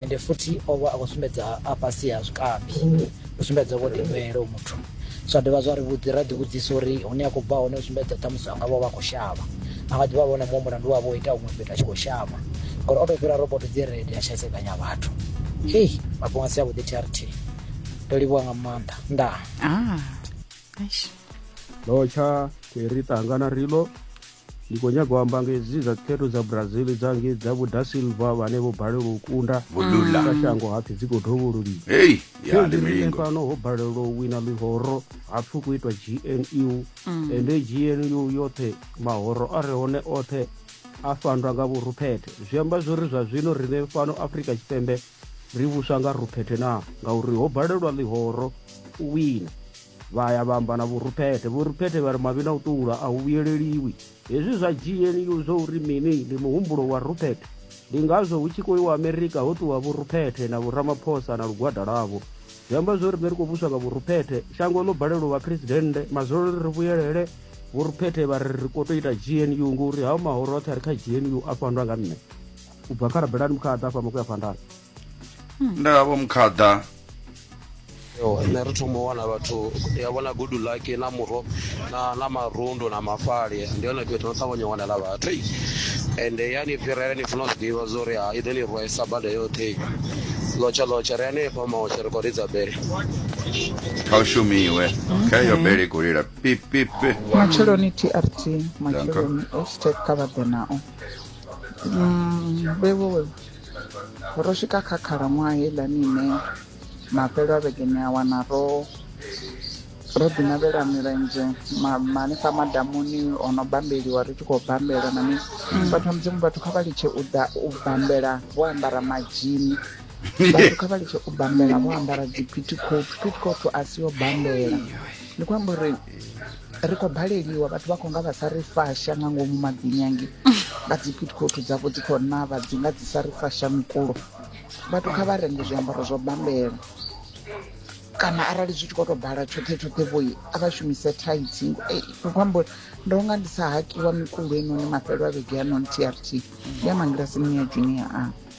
Ende futhi o vha a khou sumbedza a fhasi ha zwikambi, u sumbedza vho ḓinwelo muthu. Zwa dovha zwa ri vhudzi, ra ḓivhudzisa uri hune a khou bva hone u sumbedza ṱhamusi a nga vha o vha a khou shavha. A nga ḓi vha vha na muṅwe mulandu wa vha o ita huṅwe fhethu a tshi khou shavha, ngauri o tou fhira roboto dzi red a tshi hesedzanya vhathu. Hei, mafhungo a si avhuḓi thi a ri thi. Ndo livhuwa nga maanḓa. Ndaa. Ah, eish. Locha, Terry Tangana Rilo, Ndi khou nyaga u amba nga hedzi dza khetho dza Brazil dza ngei dza vho Da Silva vhane vho balelwa u kunda Vulula. kha shango hapfi dzi khou dovhololiswa. Hey, ya Fhedzi riṋe limingo. fhano ho balelwa u wina ḽihoro hapfi ku itwa gnu ende gnu yoṱhe mahoro a re hone oṱhe a fandwa nga vhuruphethe zwi amba zwori zwa zwino riṋe fhano afrika tshipembe ri vhuswa nga ruphethe na ngauri ho balelwa ḽihoro u wina Vha ya vha amba na Vho Rupete. Vho Rupete vha ri mavhi na u ṱuwula a hu vhuyeleliwi. Hezwi zwa GNU zwo uri mini? Ndi muhumbulo wa Rupete. Ndi ngazwo hu tshi khou iwa Amerika ho ṱuwa Vho Rupete na Vho Ramaphosa na lugwada lwavho. Zwi amba zwo ri ri khou vhuswa nga Vho Rupete. Shango ḽo balelwa u vha phresidennde, mazwolo ri ri vhuyelele. Vho Rupete vha ri ri khou tou ita GNU ngori hao mahoro oṱhe a re kha GNU a fhandwa nga nṋe. U bva kha Rabelani Mukhada a fhama ku ya phanḓa. nda vho mkhaḓa nṋe ri thoma u wana vhathu ndi a vhona good luck na murho na na marundu na mafhali ndi hone fhethu no ṱavhanya u wanela vhathu ende ya ni fhirela ni funa u zwi ḓivha zwo uri ha i ḓo ni rwaisa bada yoṱhe lotsha lotsha ri hanefha maotsha ri khou ridza bele kha u shumiwe kha iyo bele i khou lila pipipi matsheloni trt matsheloni estate kha vha ḓe nao Mm, vhewo Ro swika kha khalaṅwaha heiḽani ine mafhelo a vhege ni a wana ro ro ḓinavhela milenzhe hanefha madamuni o no bambeliwa ri tshi khou bambela na mini mm. vhathu vha mudzimu vhathu kha vha litshe u ḓa u bambela vho ambara madzhini vhathu kha vha litshe u bambela vho ambara dzi pitikofu pitikofu a si yo bambela ndi khou amba uri ri khou baleliwa vhathu vha khou nga vha sa ri fasha nga ngomu madzinyangi vha dzi pitcoat dzavho dzi khou navha dzi nga dzi sa ri fasha mikulo vhathu kha vha renge zwiambaro zwo bambela kana arali zwi tshi khou tou bala tshoṱhe tshoṱhe vhoi a vha shumise thaithi ndi khou amba uri ndo nga ndi sa hakiwa mikulo enoni mafhelo a vhege ya non trt ya mangilasini ya junior a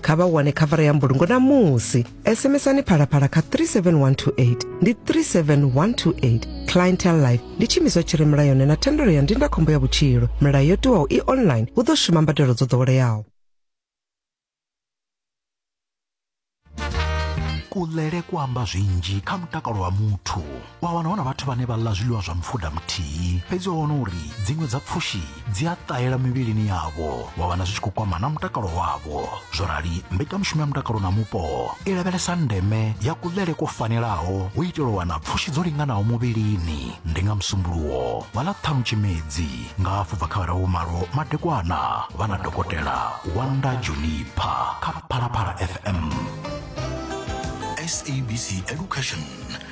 kha vha wane khavara ya mbulungo namusi sms-ani phalaphala kha 37128 ndi 37128 clientel life ndi tshiimiswa tshi re mulayoni na thendelo ya ndindakhombo ya vhutshilo milayo yo tiwaho i online hu ḓo shuma mbadelo dzo ḓoweleaho kulele ku amba zwinzhi kha mutakalo wa muthu wa wana hu na vhathu vhane vha ḽa zwiḽiwa zwa mufuda muthihi fhedzi wa wana uri dziṅwe dza pfushi dzi a ṱahela mivhilini yavho wa wana zwi tshi khou kwama na mutakalo wavho zwo rali mbekanyamushumo ya mutakalo na mupo i lavhelesa ndeme ya kuḽele kwo fanelaho u itela u wana pfushi dzo linganaho muvhilini ndi nga musumbuluwo wa ḽa ṱhanu tshimedzi nga hafhu bva kha vhara vhumalo madekwana vha na dokotela wanda junipa kha phalaphala fm sabc education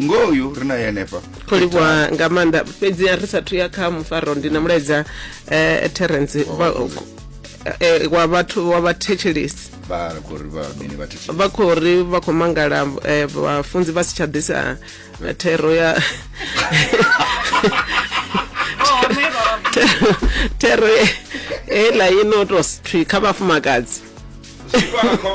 ngoho uyu ri naye henefha kho livhuwa nga maanḓa fhedzi ri sathu ya kha mufaro ndi na mulaedza eh, terence vha- eh, wa vhathu wa vhathetshelesi vha ri khou ri vha mini vha thetshelesi vha khou ri vha khou mangala eh, vhafunzi vha si tsha ḓisa eh, thero ya Thero- thero ye- heiḽa i no tou thwi kha vhafumakadzi Zwifha kha